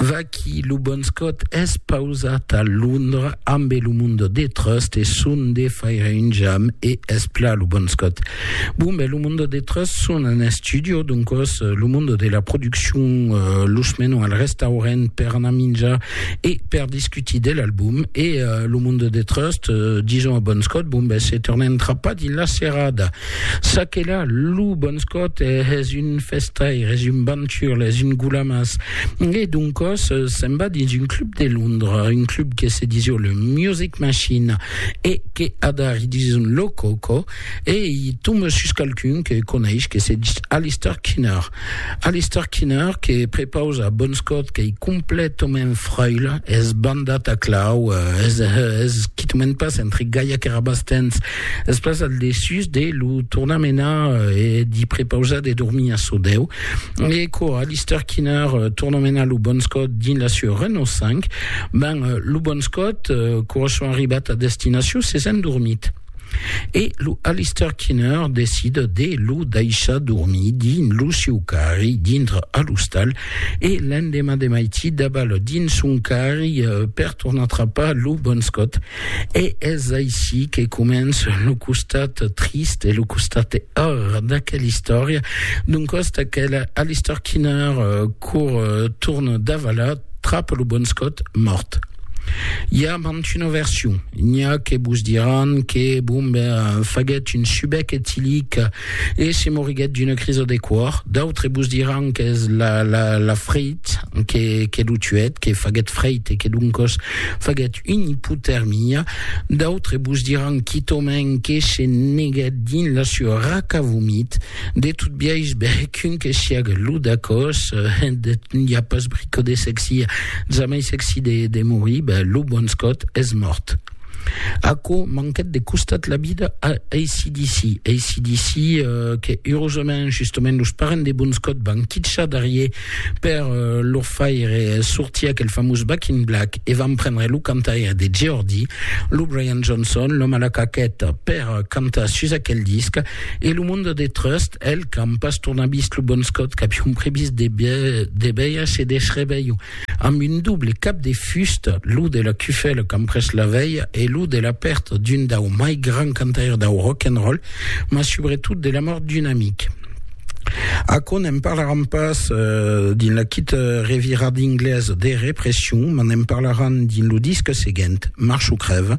Vaquí lo bon Scott es pausat a Londra ambe lo Mundo de Trust e son de faire un jam e es pla lo bon Scott. Bon ben lo Mundo de Trust son un estudio doncos lo Mundo de la produccion los menon al restaurent per anar minjar e per discutir de l'album e lo Mundo de Trust dison a bon Scott bon ben se tornem trapar dins la serada. Ça que là, lo bon scot es un festaire, es un banturle, es un goulamas. E doncòs se'n va dins un club de Londres, un club que se disio le Music Machine e que adari dison lo coco e i tombe sus qualqu'un que coneish que se dis Alistair Kinner. Alistair Kinner que prepausa Bonscot qu'ei completament fraile, es bandat a clau, es, es quitament pas entre Gaia que Rabastens, es pas al dessús de lo tornar menar e d'hi prepausar de dormir a Sodeu. E quò Alistair Kinner torna menar lo Bonscot dins la sua Renault 5, ben, lo Bonscot, quò son arribat a destinacion, s'es endormit. E lo Alistair Kinner decida de lo daishar dormir dins lo siu carri dintre a l'ostal e l'endemà de maití dabal dins son carri eh, per tornar trapar lo Bon Scott. E es aicí que comença lo costat trist e lo costat horror d'aquela istòria. D'un costat aquela Alistair Kinner eh, cour, torna davalar, trap lo bon scot mòrt. I a mant una version. N'i a que vos diràn que Bombe faguèt un subec etilic e se moriguèt d'una crisa de còr. D'autres vos diràn qu'es la, la, la freit que, que lo tuèt, que faguèt freit e que doncòs faguèt una ipotermia. D'autres vos diràn quitòmèn que se neguèt dins la sua raca vomit. De tot biais, bèc un que siague lo dacòs, n'i a pas brico de sexi, jamai sexi de morir, ben, lo bon Scott es mòrt. Aquò manquèt de costat la vida a ACDC. ACDC, que, eurosament, justement, los parents de bon Scott van quitjar darrier Per lo faire sortir aquel famós Back in Black e vam prendre lo cantaire de Geordie, lo Brian Johnson, l'òme a la caqueta, per cantar sus aquel disc e lo monde de Trust, el qu'an pas tornat vist lo Bon Scott qu'avion previst de de veire se desrevelhó amb un doble cap de fusta, lo de la cufèla qu'an pres la velha e lo de la pèrta d'un dau mai grands cantaires dau rock and roll, mas subretot de la mòrt d'un amic. Aquò n'en parlaran pas dins la quita revira d'inglés de Repression, mas n'en parlaran dins lo disc seguent, March o crèv.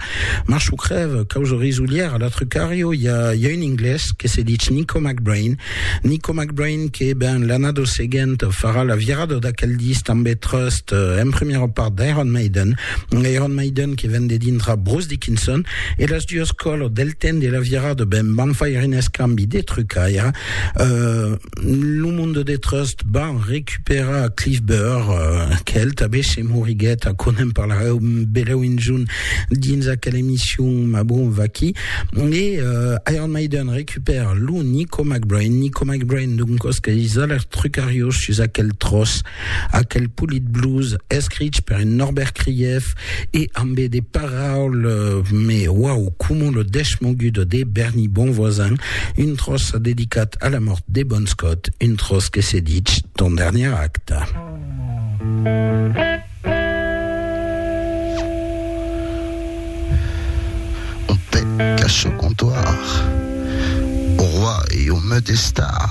March o crèv, causa risulièra, la Trucario, i a, i a un inglés que se ditz Nico McBrain. Nico McBrain que, ben, l'annada seguenta farà la virada d'aquel disc tanben Trust, en premiera part d'Iron Maiden, Iron Maiden que ven de dintra Bruce Dickinson e las duas colors del temps de la virada ben van faire un escambi de trucaire euh, lo monde de Trust van recuperar Cliff Burr euh, quel tabé se moriguet a conem parlareu beleu un junt dins aquel emission ma bon vaqui e euh, Iron Maiden recupère lo Nico McBrain Nico McBrain d'un cosque is alers trucarios sus aquel tros Aquel polit blues escrich per un Norbert Krief e ambe de paraules me uau coma lo deschmogudo de Berny Bonvoisin, un tròç dedicat a la mòrt de Bon Scott, un tròç que se dich Ton dernier acte. On pè qu'à çò comptoir au roi e au meu destar.